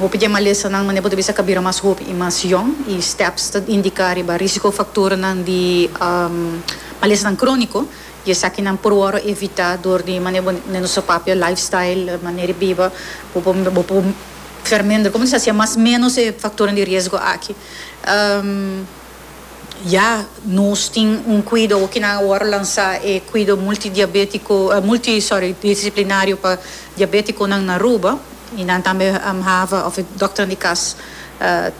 Hopi dje malesanan mane bo ta bisa ka bira mas hopi i mas yòn i STEPS ta indiká riba rísiko faktornan di malesanan króniko i esakinan por wòrdu evitá dor di mane bo mane nos papia lifestyle mané di biba bo por bo por fermender komo nos ta hasia mas ménos e faktornan di riesgo aki. Ya nos tin un cuido hoki nan a worde lansa e cuido multidiabetico multi sorry disciplinario pa diabeticonan na Aruba y nan tambe hava of doctornan di cas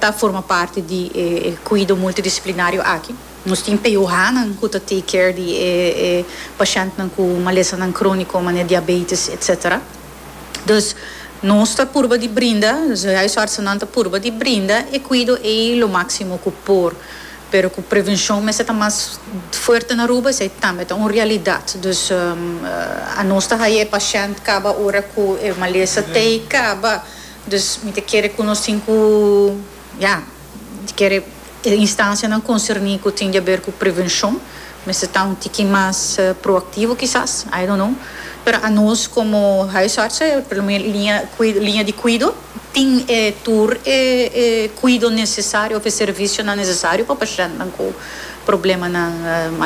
ta forma parti di e cuido multidisciplinario aki. Nos tin PUHnan cu ta take care di e e pacientenan cu malesanan cronico manera diabetes etcetera. Dus nos ta purba di brinda, nos huisartsennan ta purba di brinda e cuido ei lo maximo cu por. Pero cu prevencion mester ta mas fuerte na Aruba esei tambe ta un realidad. Dus anos ta haya e pashent caba ora cu e malesa t'ei caba. Dus mi ta kere cu nos tin cu. Ya, di kere e instansianan konserní ku tin di aber ku prevenshon mester ta un tiki mas proaktivo kisas, I don't know. Pero anos komo huisartsen, e primer liña liña di kuido, tin e tur e kuido nesesario òf e servisionan nesesario pa pashèntnan ku. problemanan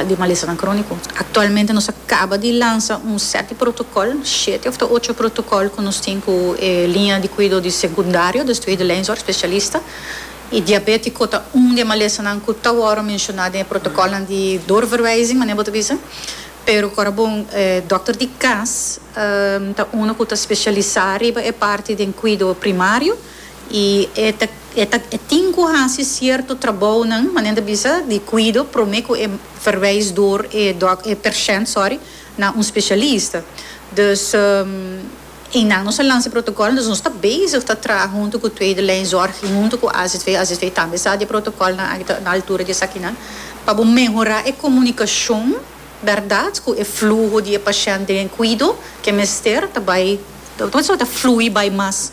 di malesanan króniko. Aktualmente nos a kaba di lansa un sèt di protokòl, shete òf ta ocho protokòl ku nos tin ku e liña di kuido di sekundario despues di leinzòrg spesialista i diabétiko ta un di e malesanan ku ta wòrdu menshoná den e protokòlnan di doorverwijzing manera bo ta bisa pero ku ora bon e dòkter di kas ta unu ku ta spesialisá riba e parti den kuido primario. y e ta e ta e tin cu haci cierto trabounan mane nan ta bisa di cuido prome cu e verwijsdoor e dok e percent sorry na un specialista dus eynan nos a lansa e protocol dus nos ta bezig ta traha hunto cu tweede lijn zorg y hunto cu azv azv tambe sa di e protocolnan aki ta na altura di esakinan pa bo mehora e comunicacion berdad cu e fluho di e pashent den cuido ke mester ta bay ta bay mas.